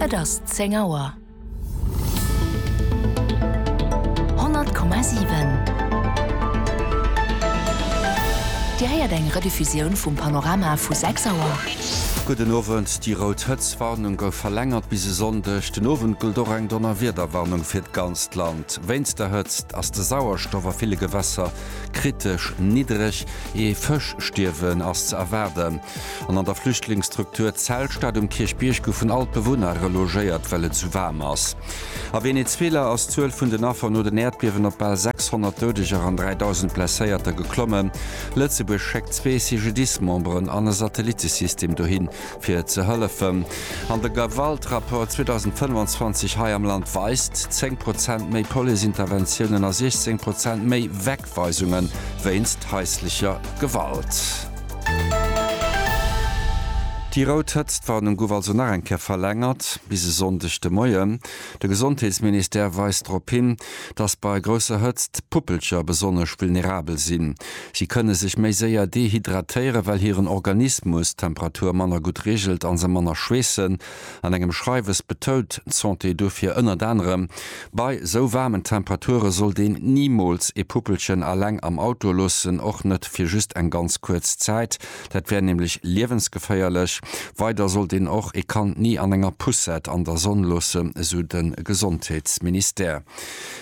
Et ass zéng Auer. Honnert Komma siwen. Dir héiert eng Rediffusioun vum Panorama vu sechs Auer. Gudden Owend, Déi rout Hëtztwarnung gouf verlängert bis e Sonndeg den Owend. Gëllt och eng Donnerwiederwarnung fir d'ganzt Land. Wéinst der Hëtzt ass de Sauerstoff a ville Gewässer kritesch niddreg. Ee Fëschstierwen ass ze erwaarden. An an der Flüchtlingsstruktur Zelstadt um Kierchbierg goufen all d'Bewunner relogéiert, well et sou waarm ass. A Venezuela ass d'Zuel vun den Affer no den Äerdbiewen op bal 600 Doudeger an 3.000 Blesséierter geklommen. Lëtzebuerg schéckt zwee CGDIS-Memberen an e Satellittesystem dohin, fir ze hëllefen. An de Gewaltrapport 2025 hei am Land weist, 10 Prozent méi Police-Interventiounen a 16 Prozent méi. Schuldzuweisungen wéinst haislecher Gewalt. Déi rout Hëtztwarnung gouf also nach eng Kéier verlängert bis e Sonndeg de Moien. De Gesondheetsministère weist drop hin, dass bei grousser Hëtzt d'Puppelcher besonnesch vulnerabel sinn. Si kënne sech méi séier dehydratéieren, well hiren Organismus d'Temperatur manner gutt reegelt a se manner schweessen. An engem Schreiwes betount d'Santé dofir ënnert anerem, bei sou waarmen Temperature sollt een nimools ee Puppelchen aleng am Auto loossen, och net fir just eng ganz kuerz Zäit, dat wär nämlech liewensgeféierlech. Weider sollt een och ee Kand ni an enger Poussette an der Sonn loossen, esou de Gesondheetsministère.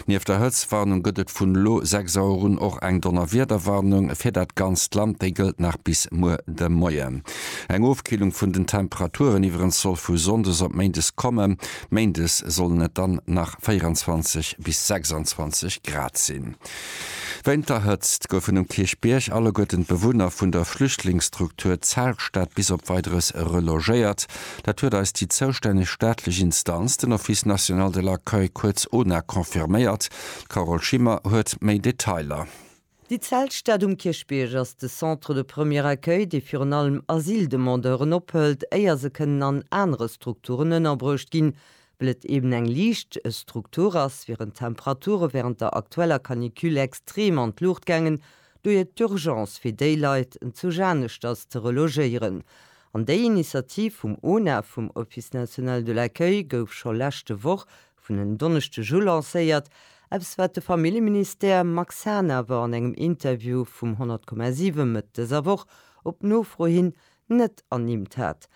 Nieft der Hëtztwarnung gëtt et vun elo 6 Auer un och eng Donnerwiederwarnung fir dat ganzt Land. Déi gëllt nach bis muer de Moien. Eng Ofkillung vun den Temperaturen iwwerens soll vu sonndes op méindes kommen. Méindes sollen et dann nach 24 bis 26 Grad sinn. Wéint der Hëtzt goufen um Kierchbierg alleguerten d'Bewunner vun der Flüchtlingsstruktur Zeltstad bis op Weideres relogéiert. Dat huet eis déi zoustänneg staatlech Instanz, den Office national de l'accueil, kuerz ona, confirméiert. D'Carole Schimmer huet méi Detailer. Déi Zeltstad um Kierchbierg ass de Centre de premier accueil, dee virun allem Asyldemandeuren ophëlt, éier se kënnen an anere Strukturen ënnerbruecht ginn. Well et eben eng liicht Struktur ass, wieren d'Temperature wärend der aktueller Canicule extrem an d'Luucht gaangen, dohier d'Urgence fir déi Leit, en Zuch aneschters ze relogéieren. An déi Initiativ vum ONAF, vum Office National de l'Accueil, gouf scho leschte Woch vun en Donneschdeg u lancéiert, eppes wat de Familljeministère Max Hahn awer an engem Interview vum 100,7 Mëtt dëser Woch op Nofro hin net ernimmt hat.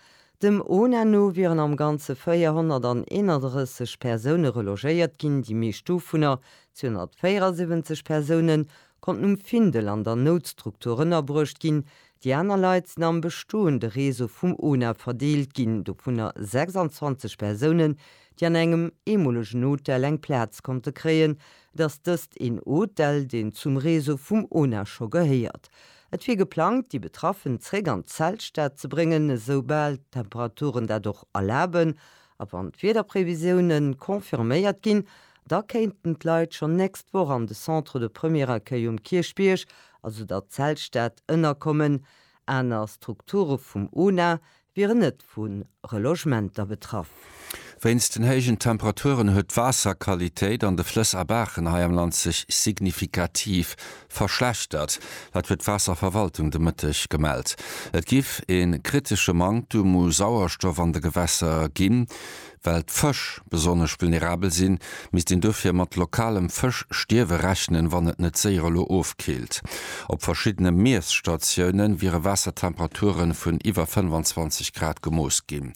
Dem ona no wieren am Ganze 431 Persoune relogéiert ginn, déi meescht dovunner, 274 Persoune, konnten um Findel an der Noutstruktur ënnerbruecht ginn, Déi aner Leit sinn am bestoende Réseau vum ONA verdeelt ginn, dovunner 26 Persounen, déi an engem eemolegen Hotel eng Plaz konnte kréien. Et ass dëst een Hotel, deen zum Réseau vum ONA scho gehéiert. Et wier geplangt, déi Betraffen zréck an d'Zeltstad ze bréngen, esou bal d'Temperaturen dat och erlaben. A wann d'Wiederprevisioune confirméiert ginn, da kéinten d'Leit schonn nächst Woch an de Centre de Premier Accueil um Kierchbierg also der Zeltstad-Ënnerkommen, aner Strukture vum ONA wieren net vu Relogementer betraff. Wéinst den héijen Temperaturen huet d'Waasserqualitéit an de Flëss a Baachen hei am Land sech signifikativ verschlechtert. Dat huet d'Waasserverwaltung de Mëtteg gemellt. Et giff ee kritesche Manktum u Sauerstoff an de Gewässer ginn. Well d'Fësch besonnesch vulnerabel sinn, misst een dofir mat lokalem Fëschstierwe rechnen, wann et net séier elo ofkillt. Op verschiddene Miesstatiounen wiere Waassertemperature vun iwwer 25 Grad gemooss ginn.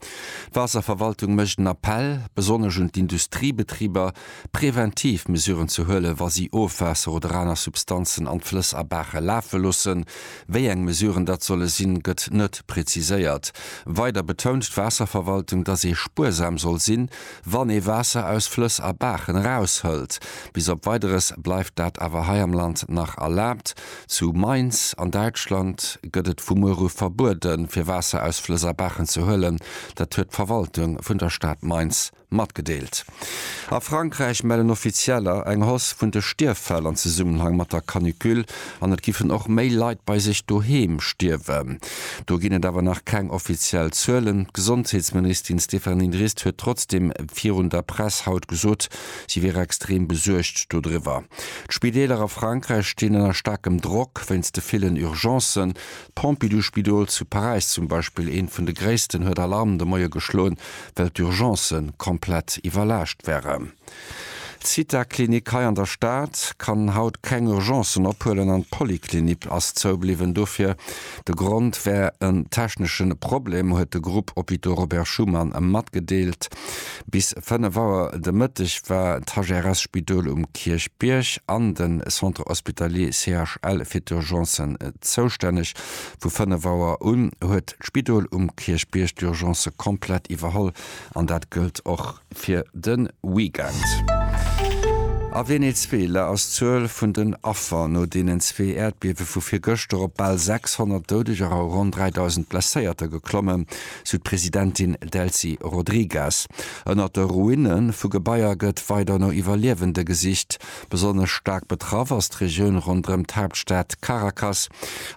D'Waasserverwaltung mécht en Appell besonnesch un d'Industriebetriber, preventiv Mesuren ze huelen, wa si Ofwaasser oder aner Substanzen an d'Flëss a Baache lafe loossen. Wéi eng Mesuren dat solle sinn, gëtt net preziséiert. Weider betount d'Waasserverwaltung, datt ee spuersam soll sinn, wann ee Waasser aus Flëss a Baachen eraushëlt. Bis op Weideres bleift dat awer hei am Land nach erlaabt. Zu Mainz an Däitschland gëtt et vu muer u verbueden, fir Waasser aus Flëss a Baachen ze huelen. Dat huet d'Verwaltung vun der Stad Mainz matgedeelt. A Frankräich mellen Offizieller eng Hausse vun de Stierffäll an Zesummenhang mat der Canicule an et giffen och méi Leit bei sech doheem stierwen. Do ginn et awer nach keng offiziell Zuelen. D'Gesondheetsministin Stéphanie Drist huet trotzdeem virun der Press haut gesot, si wier extrem besuergt dodriwwer. D'Spideeler a Frankräich stinn ënner staarkem Drock wéinst de villen Urgencen. D'Pompidou-Spidol zu Paräis zum Beispill, eent vun de gréissten, huet Alarm de Moie geschloen, well d'Urgencë komplett iwwerlaascht wären. D'Zitha-Klinik hei an der Stad kann haut keng Urgencen ophuelen an d'Polyclinique ass zoubliwwen. Dofir, de Grond wär en technesche Problem, huet de Groupe Hôpitaux Robert Schuman matgedeelt. Bis 5 Auer de Mëtteg war d'HRS-Spidol um Kierchbierg an de Centre Hospitalier CHL fir d'Urgencen zoustänneg, Vu 5 Auer un huet d'Spidol um Kierchbierg d'Urgencë komplett iwwerholl an dat gëllt och fir de Weekend. A Venezuela ass d'Zuel vun den Affer no deenen zwee Äerdbiewe vu virgëschter op bal 600 Doudeger a ronn 3.000 Blesséierter geklommen, sou d'Presidentin Delcy Rodriguez. Ënnert de Ruine vu Gebaier gëtt weider no Iwwerliewende gesicht. Besonnesch staark betraff ass d'Regioun ronderëm d'Haaptstad Caracas.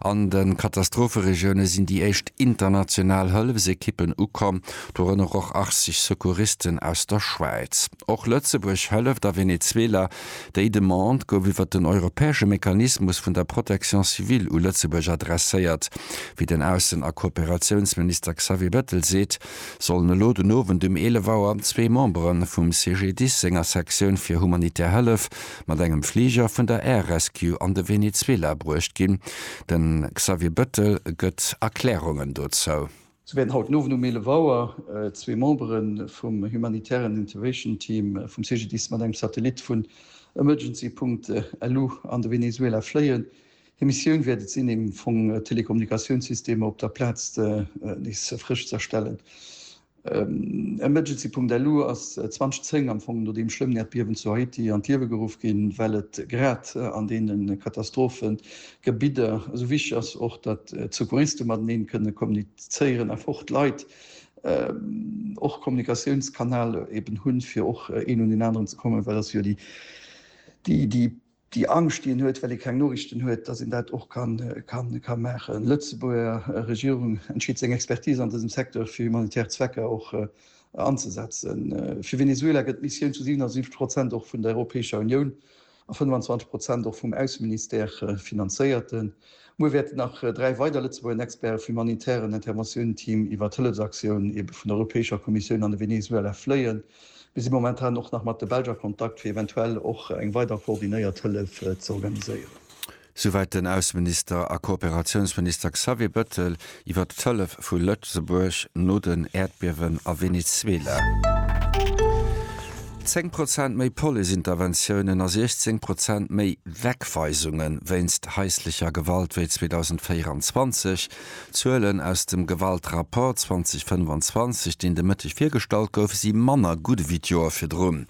An de Katastropheregioune sinn déi éischt international Hëllefsekippen ukomm, dorënner och 80 Secouristen aus der Schwäiz. Och Lëtzebuerg hëlleft a Venezuela. Déi Demande gouf iwwer den europäesche Mechanismus vun der Protection civile u Lëtzebuerg adresséiert, wéi den Aussen a Kooperatiounsminister Xavier Bettel seet. sollen elo den Owend um 11 Auer zwee Membere vum CGDIS senger Sektioun fir humanitär Hëllef mat engem Fliger vun der Air Rescue an de Venezuela bruecht ginn. De Xavier Bettel gëtt Erklärungen dozou. Sou wäerten haut den Owend um 11 Auer zwee Membere vum humanitären Intervation Team vum CGDIS mat engem Satellit vun Emergency-Punkt Elú an de Venezuela fléien. Hir Missioun wäert et sinn, am Fong d'Telekommunikatiounssystemer op der Plaz nees frësch ze erstellen. Emergency.lu ass 2010, am Fong no deem schlëmmen Äerdbiewen zu Haiti, an d'Liewe geruff ginn, well et grad an deene Katastrophegebidder esou wichteg ass och, datt d'Secouriste mateneen kënne kommunizéieren a fort Leit och e Kommunikatiounskanal eben hunn, fir och een un deen aneren ze kommen, well ass jo déi déi Angscht, déi een huet, well ee keng Noriichten huet, dass een dat och ka maachen. D'Lëtzebuerger Regierung entscheet seng Expertise an dësem Secteur fir humanitär Zwecker och anzesetzen. Fir Venezuela gëtt d'Missioun zu 77 Prozent och vun der Europäescher Unioun a 25 Prozent och vum Ausseministère finanzéiert. Muer wäerten nach dräi weider Lëtzebuerger Experte vum humanitären Interventioun-Team iwwer d'Hëllefsaktioun vun der Europäescher Kommissioun an de Venezuela fléien. Mir si momentan och nach mat de Belsch a Kontakt, fir eventuell och eng weider koordinéiert Hëllef ze organiséieren. Souwäit den Ausseminister a Kooperatiounsminister Xavier Bettel iwwer d'Hëllef vu Lëtzebuerg no den Äerdbiewen a Venezuela. Zéng Prozent méi Police-Interventiounen a 16 Prozent méi Wegweisunge wéinst haislecher Gewalt wéi 2024. D'Zuelen aus dem Gewaltrapport 2025, deen de Mëtteg virgestallt gouf, si manner gutt ewéi d'Joer virdrun.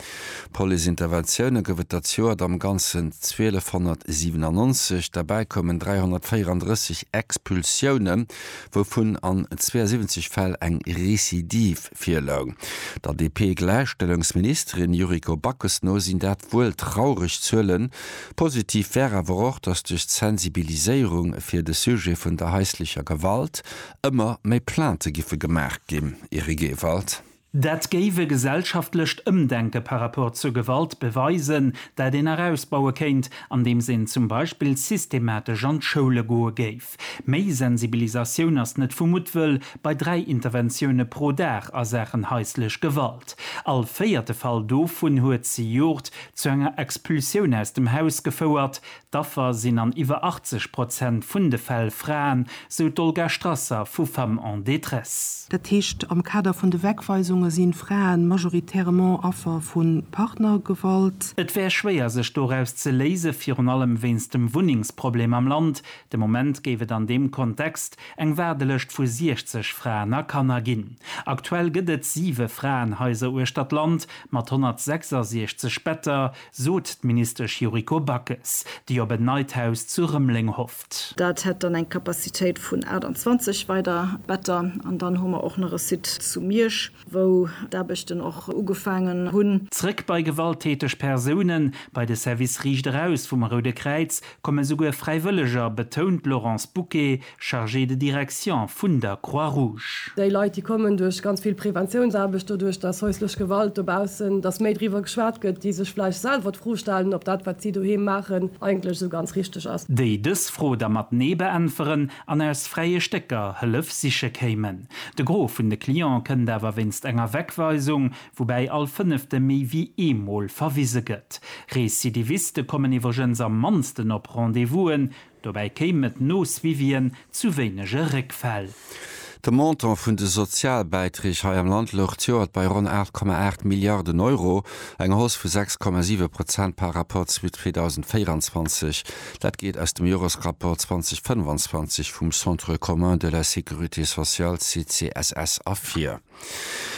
Police-Interventioune gouf et dat Joert am Ganzen 1297, derbäi koumen 334 Expulsioune, wouvun an 72 Fäll eng Recidive virloung. Der DP-Gläichstellungsministerin Yuriko Backes no sinn dat wuel traureg Zuelen. Positiv wär awer och, datt duerch d'Sensibiliséierung fir de Sujet vun der haislecher Gewalt ëmmer méi Plaintë giffe gemaach ginn. Eric Ewald. Dat géif e gesellschaftlecht Ëmdenke par rapport zur Gewalt beweisen, dat een nach ausbaue kéint, andeems een zum Beispill systematesch an d'Schoule goe géif. Méi Sensibilisatioun ass net vu Muttwëll bei dräi Interventioune pro Dag a Saachen haislech Gewalt. All véierte Fall dovun huet zejoert zu enger Expulsioun aus dem Haus gefouert. D'Affer sinn an iwwer 80 Prozent vun de Fäll Fraen, sou d'Olga Strasser vu Femmes en détresse. Dat heescht, am Kader vun de Wegweisunge si Frae majoritairement Affer vu Partnergewalt. Et wär schwéier sech doraus ze léisen, virun allem wéinst dem Wunnengsproblem am Land, De Moment géif et an deem Kontext eng Waardelëscht vu 60 Fraen a Kanner ginn. Aktuell gëtt et siwe Fraenhaiser uechter d'Land mat 166 Better, sot d'Ministesch Yuriko Backes, déi op en neit Haus zu Rëmeleng hofft. Dat hätt dann eng Capacitéit vun 28 weider Better. An dann hu mer och nach e Site zu Miersch, wou d'Aarbechten och ugefaangen hunn. Zréck bei gewalttäteg Persounen, Bei de Service Riicht eraus vum Roude Kräiz Komme souguer Fräiwëlleger, betount d'Laurence Bouquet, Chargée de direction vun der Croix-Rouge. Déi Leit, déi kommen duerch ganz vill Preventiounsaarbecht, doduerch, datt hauslech Gewalt dobaussen, datt méi driwwer geschwat gëtt, déi sech vläicht selwer d'Fro stellen, ob dat, wat si doheem maachen, eigentlech esou ganz richteg ass. Déi dës Fro da mat Nee beäntweren an aus fräie Stécker Hëllef siche kéimen. De Gros vun de Cliente kënnt awer wéinst enger Wegweisung, woubäi all Fënnefte méi wéi eemol verwise gëtt. Recidiviste kommen iwwregens am mannsten op Rendez-vousen, dobäi kéim et no Suivien zu wéinege Réckfäll. De Montant vun de Sozialbäiträg hei am Land louch d'Joert bei ronn 8,8 Milliarden Euro, eng Hausse vu 6,7 Prozent par Rapport zu 2024. Dat geet aus dem Joresrapport 2025 vum Centre commun de la sécurité sociale, CCSS, ervir.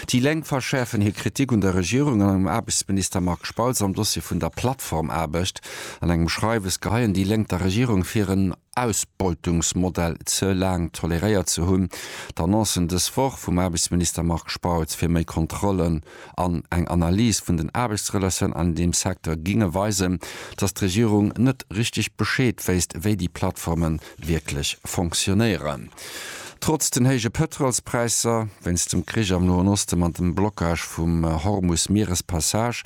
Déi Lénk verschäerfen hir Kritik un der Regierung an engem Aarbechtsminister Marc Spautz am Dossier vun der Plattformaarbecht. An engem Schreiwes geheien déi Lénk der Regierung vir, en Ausbeutungsmodell ze laang toleréiert ze hunn. D'Annoncen dës Woch vum Aarbechtsminister Marc Spautz fir méi Kontrollen an eng Analys vun den Aarbechtsrelatiounen an deem Secteur géinge weisen, datt d'Regierung net richteg Bescheed wéisst, wéi déi Plattformen wierklech fonctionnéieren. Trotz den héije Pëtrolspräisser wéinst dem Krich am Noen Osten an dem Blockage vum Hormus-Mierespassage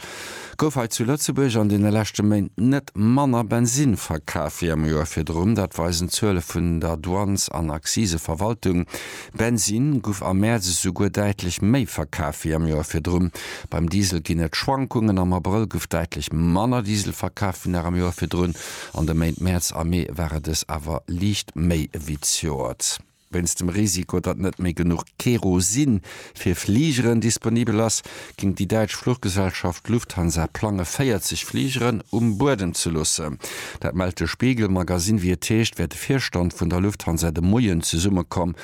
gouf hei zu Lëtzebuerg an deene leschte Méint net manner Bensinn verkaf wéi am Joer virdrun. Dat weisen d'Zuele vun der Douanes an Akziseverwaltung. Bensinn guff am Mäerz esouguer däitlech méi verkaf wéi am Joer virdrun. Beim Diesel ginn et Schwankungen, am Abrëll guff däitlech manner Diesel verkaf wéi nach am Joer virdrun. An de Méint Mäerz a Mee war et es awer liicht méi ewéi d'Joert. Wéinst dem Risiko, datt net méi genuch Kerosin fir Fligeren disponibel ass, géing déi däitsch Fluchgesellschaft Lufthansa plange 40 Fligeren um Buedem ze loossen. Dat mellt de Spiegel Magazine. Wéi et heescht, wär de Virstand vun der Lufthansa de Moien zesummekomm,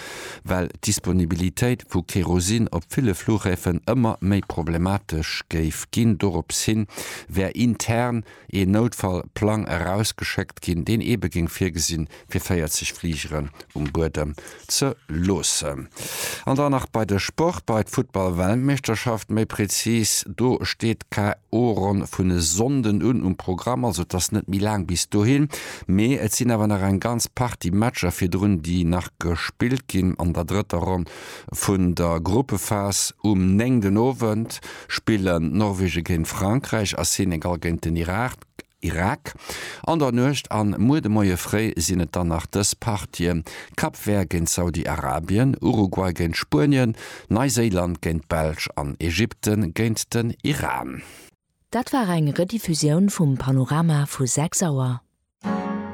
well d'Disponibilitéit vu Kerosin op ville Flughäfen ëmmer méi problematesch géif ginn. Dorops hin wär intern ee Noutfall-Plang erausgeschéckt ginn, deen eebe géing virgesinn, fir 40 Fligeren um Buedem ze loossen. An dann nach bei de Sport, bei d'Futtball-Weltmeeschterschaft méi prezis. Do steet d'KO-Ronn vun e Sonnden un um Programm, also et ass net méi laang bis dohin. Mee et sinn awer nach eng ganz Partie Matcher virdrun, déi nach gespillt ginn an der drëtter Ronn Vun der Gruppephas um 9 den Owend spillen Norwegen géint Frankräich a Senegal géint den Irak. An der Nuecht an muer de Moie fréi sinn et dann nach dës Partien, Cap Vert géint Saudi-Arabien, Uruguay géint Spuenien, Neiséiland géint d'Belsch an Ägypten géint den Iran. Dat war eng Rediffusioun vum Panorama vu 6 Auer.